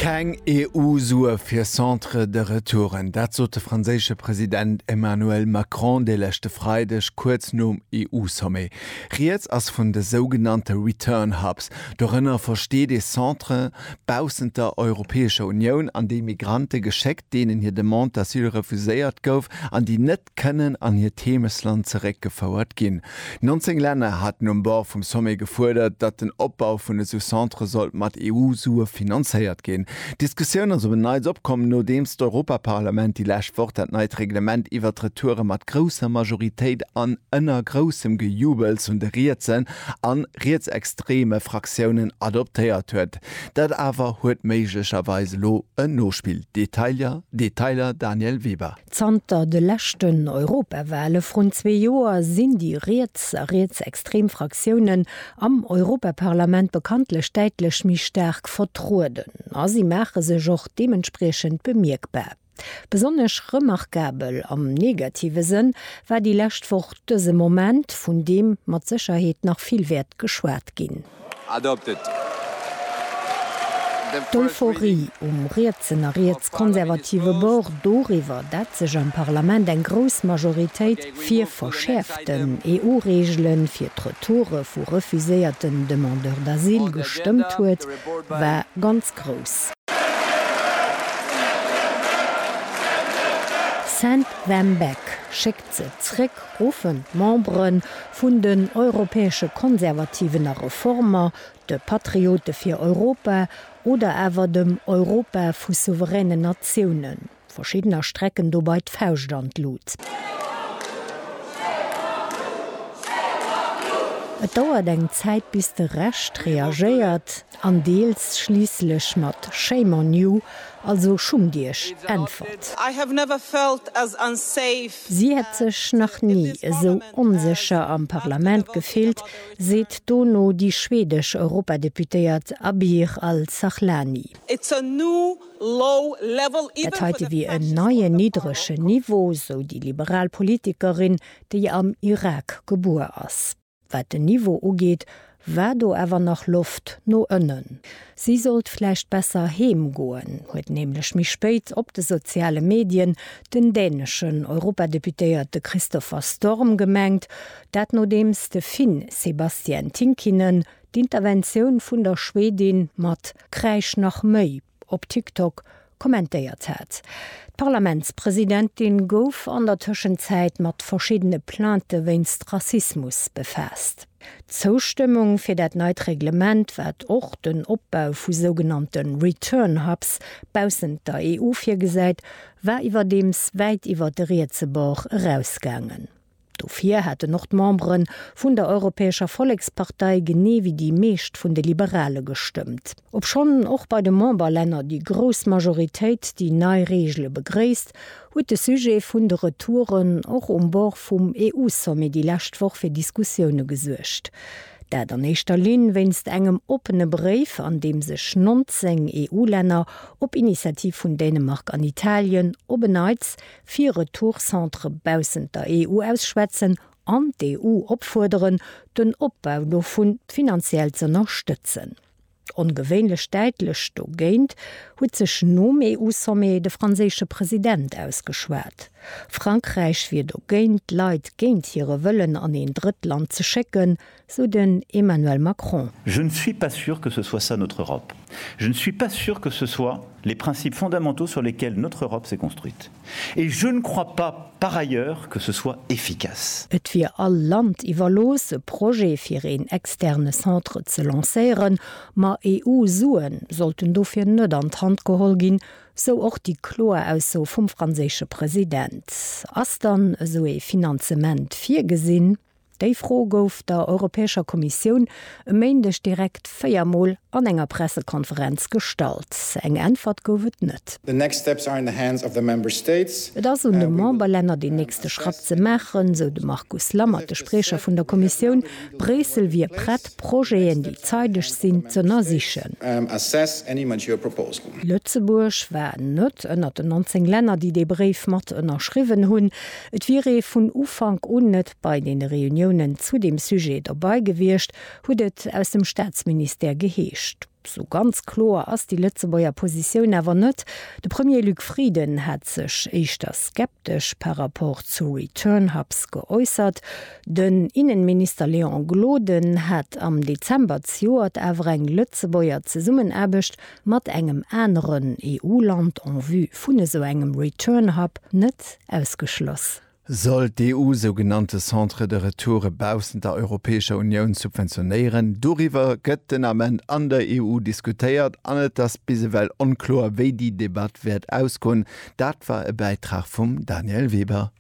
Keng EU-Sue fir Centres de retouren, dat sot de franséische President Emmanuel Macron de leschte Freideg kuerz nom EU-Sommet. Rieds ass vun de sougenannte Return Hubs. Dorënner versteet ee Centre baussent der Europäescher Unioun, an déi Migrante geschéckt, deenen hir Demande d'asile refuséiert gouf an déi net kënnen an hiert Heemesland zeréckgefouert ginn. 19 Länner haten um Bord vum Sommet gefuerdert, datt den Opbau vun esou Centre sollt mat EU-Sue finanzéiert ginn. D'Diskussioun ass op en Neits opkomm, nodeems d'Europaparlament déi lescht Woch dat neit Reglement iwwert d'Retouren mat grousser Majoritéit an ënner groussem Gejubels vun de rietsen a rietsextreme Fraktiounen adoptéiert huet. Dat awer huet méiglecherweis elo en Nospill. Detailer, Detailer, Daniel Weber. Zanter de leschten Europawale vrun zwee Joer sinn déi riets a rietsextrem Fraktiounen am Europaparlament bekanntlech däitlech méi staark vertrueden a si maache sech och deementspriechend bemierkbar. Besonnesch remarkabel, am negative Sënn, war déi lescht Woch dëse Moment, vun deem mat Sécherheet nach vill wäert geschwat ginn. D'Euphorie um rietsen a riets-konservative Bord doriwwer, dat sech am Parlament eng grouss Majoritéit fir verschäerften EU-Reegele fir d'Retoure vu refuséierten Demandeurs d'asile gestëmmt huet, war ganz grouss. Send them back! Ze zréck ruffen d'Membere vun den Europäesche Konservativen a Reformer, de Patriote fir Europa oder awer dem Europa vu souveränen Natiounen. Verschiddener strecken dobei d'Fauscht an d'Lut. Et dauert eng Zäit bis de Rescht reagéiert. an deels schliisslech mat Shame on you, also schummt iech, äntwert. Si hätt sech nach ni esou onsécher am Parlament gefillt, seet dono déi schwedesch Europadeputéiert Abir Al-Sahlani. Dat heite wier en neien niddregen Niveau, sou déi liberal Politikerin, déi am Irak gebuer ass. Wat den Niveau ugeet, war do awer nach Loft no ënnen. Si sollt vläicht besser heem goen, huet nämlech méi spéit op de soziale Medien den däneschen Europadeputéierte Christopher Storm gemengt. Dat nodeems de Finn Sebastian Tinkinen d'Interventioun vun der Schwedin mat Kräisch nach méi! op TikTok kommentéiert hat. D'Parlamentspresidentin gouf an der Tëschenzäit mat verschiddene Plainte wéinst Rassismus befaasst. D'Zoustëmmung fir dat neit Reglement, wat och den Opbau vu sougenannte Return Hubs baussent der EU virgesäit, war iwwerdeems wäit iwwer de rietse Bord erausgaangen. Dofir hätten och d'Membere vun der Europäescher Vollekspartei, genee wéi déi meescht vun de Liberale gestëmmt. Obschonn och bei de Memberlänner déi grouss Majoritéit déi nei Reegele begréisst, huet de Sujet vun de Retouren och um Bord vum EU-Sommet déi lescht Woch fir Diskussioune gesuergt. Dat an éischter Linn wéinst engem oppene Bréif, an deem sech 19 EU-Länner, op Initiativ vun Dänemark an Italien, op en Neits fir Retourcentre baussent der EU ausschwätzen an d'EU opfuerderen, den Opbau dovun finanziell z'ënnerstëtzen. Ongewéinlech däitlech dogéint huet sech nom EU-Sommet de franséische President ausgeschwat. Frankräich wier dogéint, d'Leit géint hire Wëllen an een Drëttland ze schécken, sou den Emmanuel Macron. Je ne suis pas sûr que ce soit ça notre Europe. Je ne suis pas sûr que ce soit les principes fondamentaux sur lesquels notre Europe s'est construite. Et je ne crois pas, par ailleurs, que ce soit efficace. Et wier all Land iwwerlooss, e Projet fir een externe Centre ze lancéieren, ma EU-Sue sollten dofir net an d'Hand geholl ginn, sou och déi kloer Ausso vum franséische President. Ass dann esou ee Finanzement virgesinn? Déi Fro gouf der Europäescher Kommissioun e Méindeg direkt véier Mol an enger Pressekonferenz gestallt. Eng Äntwert gouf et net. Et ass un de Memberlänner deen nächste Schratt ze maachen, esou de Markus Lammert, de Spriecher vun der Kommissioun. Bréissel wier prett, Projeten, déi zeideg sinn, z'ënnersichen. Lëtzebuerg war net ënnert den 19 Länner, déi dee Bréif mat ënnerschriwwen hunn. Et wier ee vun Ufank un net bei deene Reuniounen zu deem Sujet dobei gewiescht, huet et aus dem Staatsministère geheescht. Sou ganz kloer ass déi Lëtzebuerger Positioun awer net. De Premier Luc Frieden hat sech éischter skeptesch par rapport zu Return Hubs geäussert. Den Innenminister Léon Gloden hat am Dezember zejoert awer eng Lëtzebuerger Zesummenaarbecht mat engem aneren EU-Land en vue vun esou engem Return Hub net ausgeschloss. Sollt d'EU sougenannte Centres de retoure baussent der Europäescher Unioun subventionéieren? Doriwwer gëtt den Ament an der EU diskutéiert an et ass bis ewell onkloer, wéi déi Debatt wäert ausgoen. Dat war e Bäitrag vum Danièle Weber.